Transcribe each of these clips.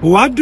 What?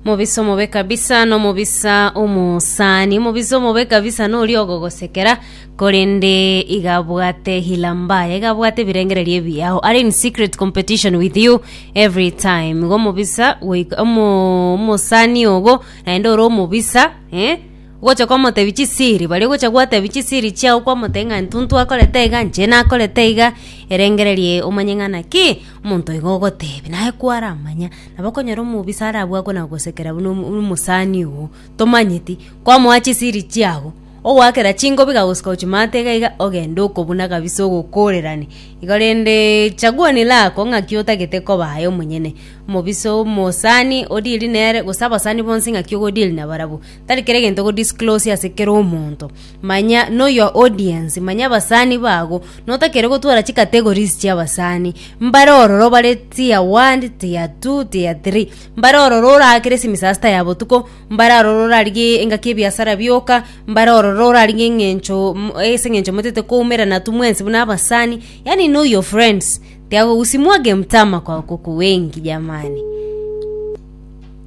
Mobisa omobe kabisa nomobisa omosani omobisa omobe kabisa nori ogogosekera korende igabwate hila mbaya igabwate ebirengererio ebiyago are in secret competition with you every time igo omobisa goika- omo- omosani ogo naende ore omobisa eh? Gocha kwamotebia chisiri, baria ogocha gwatebia chisiri chiao kwamotebia ng'a ntuntu akorete iga, inche nakorete iga, erengereria omanye ng'a naki omonto oiga ogotebia, naye kwaramanya. Nabo okonyora omobisa arabwo akwo nagosekera buna omo omosani oo, tomanyeti, kwamoa chisiri chiago, ogoakera chingobi kagosika ochimate iga iga, ogende okobuna kabisa ogokorerani. Igo rende chaguo ni lako ng'aki otagete koba aye omonyene, omobisa omosani o deal nere gose abasani bonsi ng'aki ogo deal nabarabwo. Tari kera egento go disclose ase kera omonto. Manya know your audience, manya abasani bago, notakere gotwara chi categories chia abasani. Mbare ororo bare tier one, tier two, tier three. Mbare ororo oraakere esemisasta ya botuko, mbare aroro orarigie engaki ebiasara bioka, mbare ororo orarigie eng'encho mm ase eng'encho motete koumerana atu mwensi buna abasani, yaani know your friends, tiago usimwage mtama kwa kuku wengi jamani.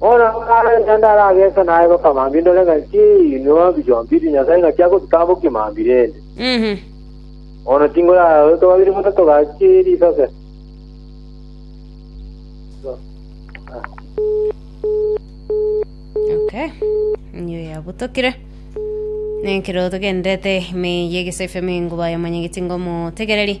Bono akare naende arageese naye goka mambia ndore ng'a inki inwe mbijombi ri Nyasae ng'aki agobitambokia mambia rende. Bono tinkoraara intwe babere buna togachie risase. Okay. Niyo yabutokire. Nekero togendete ime yegesaifeme ngoba yamanyegeti ngomo tegereri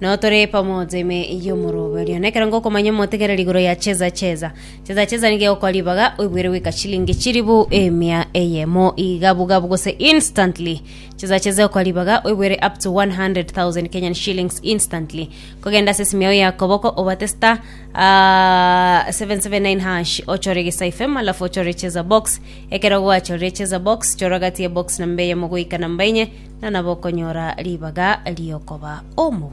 Nao tore pamoja ime y'omorobe oria. Na ekero ngokomanya omotegereri igoro ya cheza cheza, cheza cheza nigo egokora ribaga, oigwere goika chilingi chiribu emia eyemo iga bugabu gose instantly. Cheza cheza egokora ribaga, oigwere up to 100,000 Kenyan shillings instantly. Kogenda ase esimi yao ya koboko obate star ah, 779 hash ochore gesa FM alafu ochore cheza box. Ekero gwachorire cheza box, chora gati ya box namba eyemo goika namba enye, na nabo okonyora ribaga riokoba omobu.